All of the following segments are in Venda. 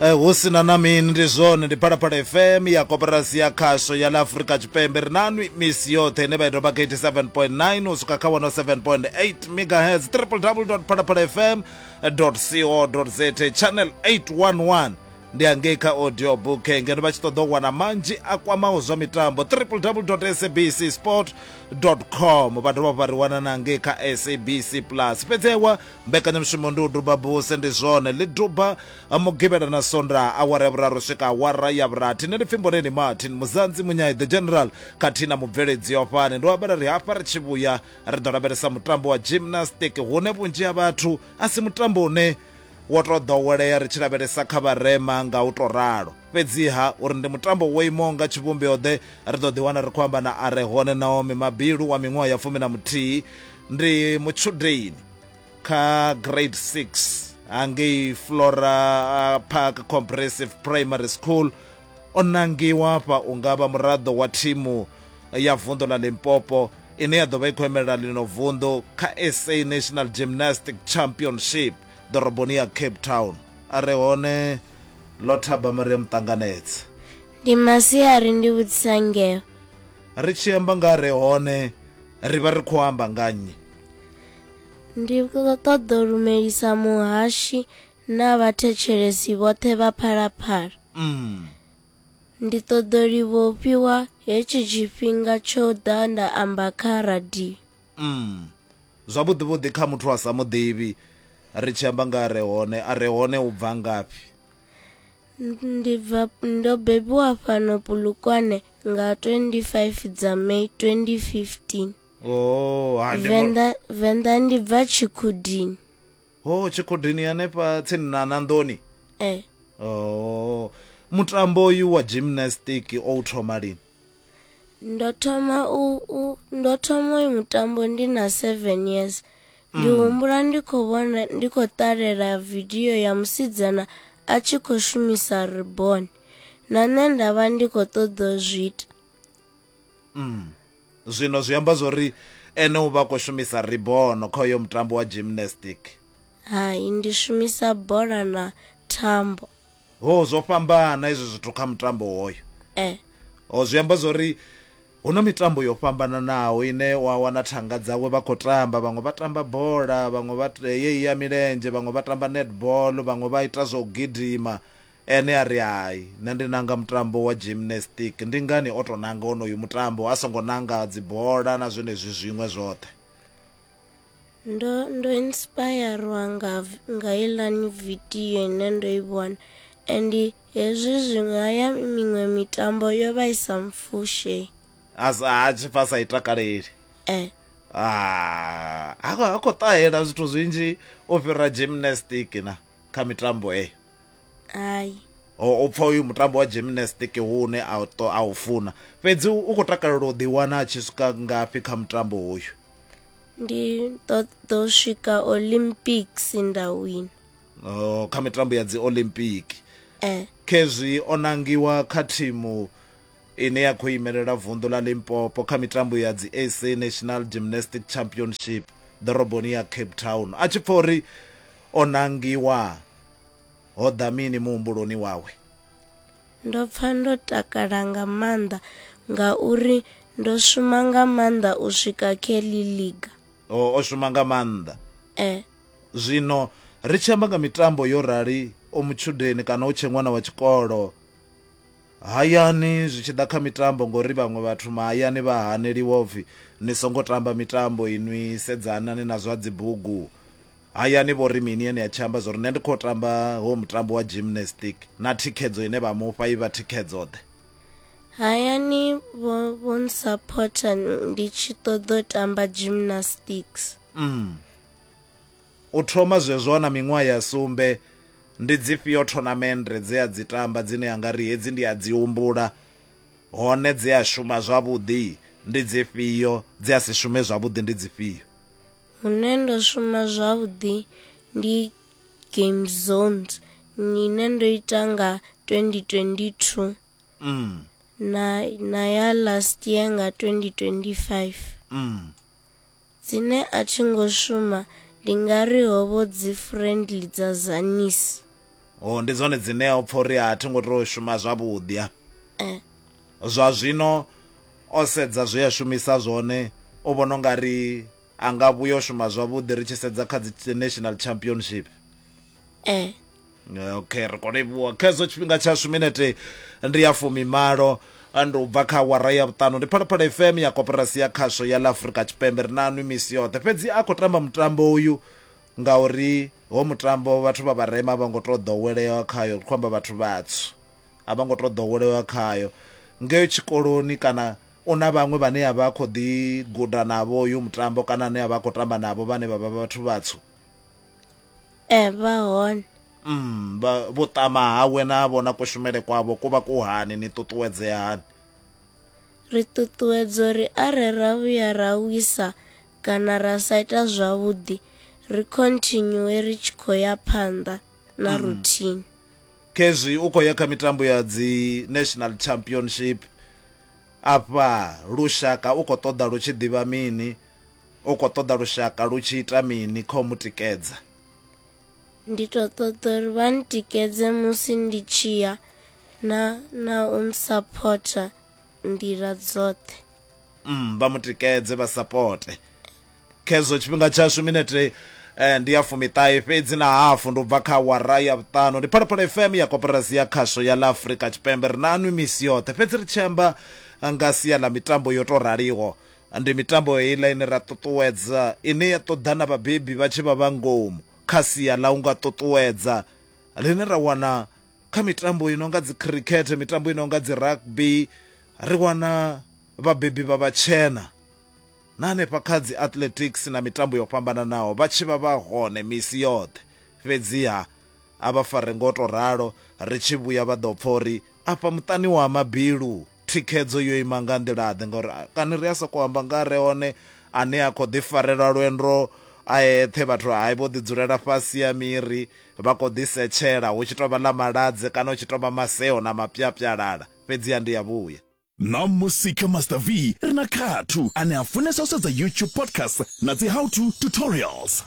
Eh, hu si na na mini ndi zwone ndi phalaphala fm ya koporasi ya khasho ya ḽa afurika tshipembe ri na nwi misi yoṱhe ine vha i doba 87.9 u swika kha 107.8 megahertz www phalaphala fm co za channel 811 ndi hangei kha audio book ngeno vha tshi ṱoḓa u wana manzhi a kwamaho zwa mitambo www sabc sport com vha dovha vha ri wana na hangei kha sabc plus fhedzewa Mbekanyamushumo ndi u duba buse, ndi zwone. Ḽi duba Mugivhela na Sondaha, awara ya vhuraru u swika awara ya vhurathi. Nṋe ndi pfi Mboneni Martin, Muzanzi Munyai, The General khathihi na mubveledzi wa fhano. Ndo ambela ri hafha ri tshi vhuya ri ḓo lavhelesa mutambo wa gymnastic, hune vhunzhi ha vhathu a si mutambo une wo tou ḓowelea ri tshi lavhelesa kha vharema nga u tou ralo. Fhedziha, uri ndi mutambo wo imaho nga tshivhumbeo-ḓe, ri ḓo ḓiwana ri khou amba na a re hone Naomi Mabilu wa miṅwaha ya fumi na muthihi. Ndi mutshudeni kha grade 6 hangei Flora Park Comprehensive Primary School. O nangiwa fha u nga vha muraḓo wa thimu ya vunḓu ḽa Limpopo ine ya ḓo vha i khou emelela ḽino vunḓu kha SA National Gymnastic Championship ḓoroboni ya Cape Town. A re hone Ḽo thaba Maria Muṱanganedzi. Ndi masiari ndi vhudzisa ngeo. Ri tshi amba nga re hone ri vha ri khou amba nga nnyi? Ndi ṱoḓo lumelisa muhashi na vhathetshelesi vhoṱhe vha Phalaphala. Mm. Ndi ṱoḓo livhofhiwa hetshi tshifhinga tsho ḓa nda amba kha radio. Umm zwavhuḓi vhuḓi kha muthu a sa muḓivhi ri tshi amba nga re hone a re hone u bva ngafhi ndi bva ndo bebiwa fhano pulukwane nga 25 dza may 2015 oh ha ndi venḓa venḓa ndi bva tshikhudini oh tshikhudini hanefha tsini na na nḓoni eh oh mutambo uyu wa gymnastic o u thoma lini ndo thoma u, u ndo thoma uyu mutambo ndi na 7 years ndi mm. humbula ndi khou vhona ndi khou ṱalela vidio ya musidzana a tshi khou shumisa ribon na nṋe nda vha ndi khou ṱoḓa zwi ita mm. zwino zwi amba zwo ri ene u vha khou shumisa ribono kha uyo mutambo wa gymnastic hai ndi shumisa bola na thambo Ho zwo fhambana izwi zwithu kha mutambo hoyo. Eh. Ho zwi amba zwori hu na mitambo yo fhambananaho ine wa wana thanga dzawe vha khou tamba vhaṅwe vha tamba bola vhaṅwe vha yeyi ya milenzhe vhaṅwe vha tamba netball vhaṅwe vha ita zwa u gidima ene a ri hai nṋe ndi nanga mutambo wa gymnastic ndi ngani o tou nanga onoyu mutambo a songo nanga dzibola na zwenezwi zwiṅwe zwoṱhe ndo ndo inspirwa nga nga ilani video ine ndo i vhona and hezwi zwiṅwe haya miṅwe mitambo yo vha i sa mfushe a tshi pfa sa i takaleli eh ah, ha ha khou ṱahela zwithu zwinzhi u fhira gymnastic na kha mitambo eyo hai u pfa uyu mutambo wa gymnastic hune a u funa fhedzi u khou takalela u ḓiwana a tshi swika ngafhi kha mutambo uyu ndi ḓo ḓo swika olympics nda wina oh, kha mitambo ya dzi olympic eh. khezwi o nangiwa kha thimu ine ya khou imelela vunḓu ḽa limpopo kha mitambo ya dzi sa national gymnastic championship ḓoroboni ya cape town a tshi pfa uri o nangiwa ho ḓa mini muhumbuloni wawe? Ndo pfa ndo takala nga maanḓa ngauri ndo shuma nga maanḓa u swika Kelly Liga. O, o shuma nga maanḓa. E. Zwino ri tshi amba nga mitambo yo rali o mutshudeni kana o tshe ṅwana wa tshikolo hayani zwi tshi ḓa kha mitambo ngori vhaṅwe vhathu mahayani vha haneliwa upfi ni songo tamba mitambo inwi sedzanani na zwa dzibugu Hayani vho ri mini ene a tshi amba zwori nṋe ndi khou tamba howo mutambo wa gymnastic na thikhedzo ine vha mufha i vha thikhedzo-ḓe? Hayani vho vho nsaphotha ndi tshi ṱoḓa u tamba gymnastics. Umm. U thoma zwezwo a na miṅwaha ya sumbe, ndi dzifhio thonamennde dze a dzi tamba dzine a nga ri hedzi ndi a dzi humbula, hone dze a shuma zwavhuḓi ndi dzifhio, dze a si shume zwavhuḓi ndi dzifhio? hune ndo shuma zwavhuḓi ndi game zones ine ndo ita nga 2022 mm. na, na ya last year nga 2025 mm. dzine a thi ngo shuma ndi nga ri hovho dzi friendly dza zanis o oh, ndi dzone dzine o pfa uri a thi ngo to shuma zwavhuḓi a eh. Zwa zwino o sedza zwe a shumisa zwone, u vhona u nga ri a nga vhuya u shuma zwavhuḓi ri tshi sedza kha dzi National Championship. Ee. Okay, ri khou livhuwa. Khezwo tshifhinga tshashu minete ndi ya fumimalo ndi u bva kha awara ya vhuṱanu ndi Phalaphala FM ya Koporasi ya Khasho ya ḽa Afrika Tshipembe ri na nwi misi yoṱhe. Fhedzi a khou tamba mutambo uyu ngauri ho mutambo vhathu vha vharema vha ngo to ḓowelea khayo ri khou amba vhathu vhatswu a vha ngo to ḓowelewa khayo ngeo tshikoloni kana u na vhaṅwe vhane a vha khou ḓi guda navho uyu mutambo kana ane a vha khou tamba navho vhane vha vha vhathu vhatswu ee vha hone mm vhuṱama hawe na vhona kushumele kwavho ku vha ku hani ni ṱuṱuwedzea hani ri ṱuṱuwedza uri are ra vhuya ra wisa kana ra sa ita zwavhuḓi ri continue ri tshi khou ya phanḓa na mm. routine Khezwi u khou ya kha mitambo ya dzi National Championship, afha lushaka u khou ṱoḓa lu tshi ḓivha mini, u khou ṱoḓa lushaka lu tshi ita mini kha u mu tikedza. Ndi tou ṱoḓa uri vha ntikedze musi ndi tshi ya na na u nsaphotha nḓila dzoṱhe. mm, vha mu tikedze vha sapote khezwo tshifhinga tshashu minete eh, ndi ya fumiṱahe fhedzi na hafu ndi u bva kha wara ya vhuṱanu ndi phalaphala fm ya koporasi ya khasho ya la afrika tshipembe ri nanwi misi yoṱhe fhedzi ri tshi amba nga sia ḽa mitambo yo tou raliho ndi mitambo heiḽa ine ra ṱuṱuwedza ine ya ṱoḓa na vhabebi vha tshi vha vha ngomu kha sia ḽa u nga ṱuṱuwedza ḽine ra wana kha mitambo i nonga dzi khirikhethe mitambo i nonga dzi rugby ri wana vhabebi vha vhatshena na hanefha kha dzi athletics na mitambo yo fhambananaho vha tshi vha vha hone misi yoṱhe fhedziha a vha fare ngo to ralo ri tshi vhuya vha ḓo pfa uri afha muṱani wa mabilu Thikhedzo yo ima nga nḓila-ḓe ngauri kani ri a sokou amba nga re hone ane a khou ḓi farelwa lwendo a eṱhe vhathu hai vho ḓi dzulela fhasi ya miri vha khou ḓi setshela hu tshi tou vha ḽa maladze kana hu tshi tou vha maseo na mapyapyalala fhedziha ndi ya vhuya Ṋamusi kha Master V ri na Khathu ane a funesa u sedza YouTube podcast na dzi how to tutorials.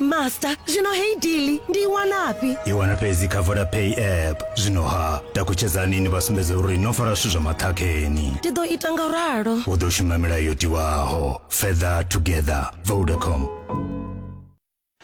master zwino heyi dili ndi i wanafhi i wana fhedzi kha vodapay app zwino ha takutshedzani ni vha sumbedza uri no fara zwithu zwa maṱhakheni ndi ḓo ita nga u ralo u ḓo shuma milayo yo tiwaho further together vodacom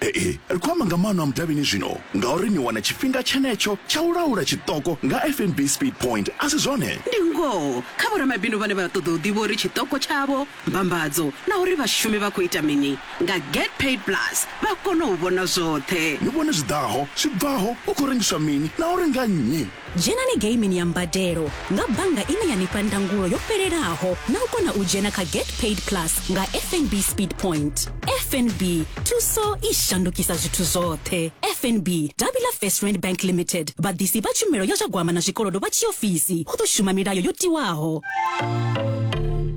ee ri khou amba nga maano a mudavhini zwino ngauri ni wana tshifhinga tshenetsho tsha u laula tshiṱoko nga fnb speed point a si zwone ndi ngoho kha vhoramabindu vhane vha ṱoḓa u ḓivha uri tshiṱoko tshavho Mbambadzo na uri vhashumi vha khou ita mini nga Get Paid Plus vha kona u vhona zwoṱhe. Ni vhone zwi ḓaho, zwi bvaho, hu khou rengiswa mini na uri nga nnyi. Dzhenani geimini ya mbadelo nga bannga ine ya ni fha ndangulo yo fhelelaho na u kona u dzhena kha Get Paid Plus nga FNB Speed Point. FNB, thuso i shandukisa zwithu zwoṱhe. FNB, davhi ḽa First Rand Bank Limited, vhaḓisi vha tshumelo ya zwa gwama na zwikolodo vha tshiofisi, hu ḓo shuma milayo yo tiwaho.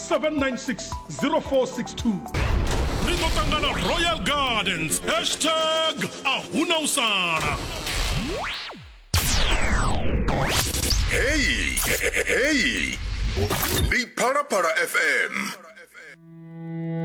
796 ri ḓo ṱangana royal gardens hashtag a huna u sala heyi heyi ndi phalaphala fm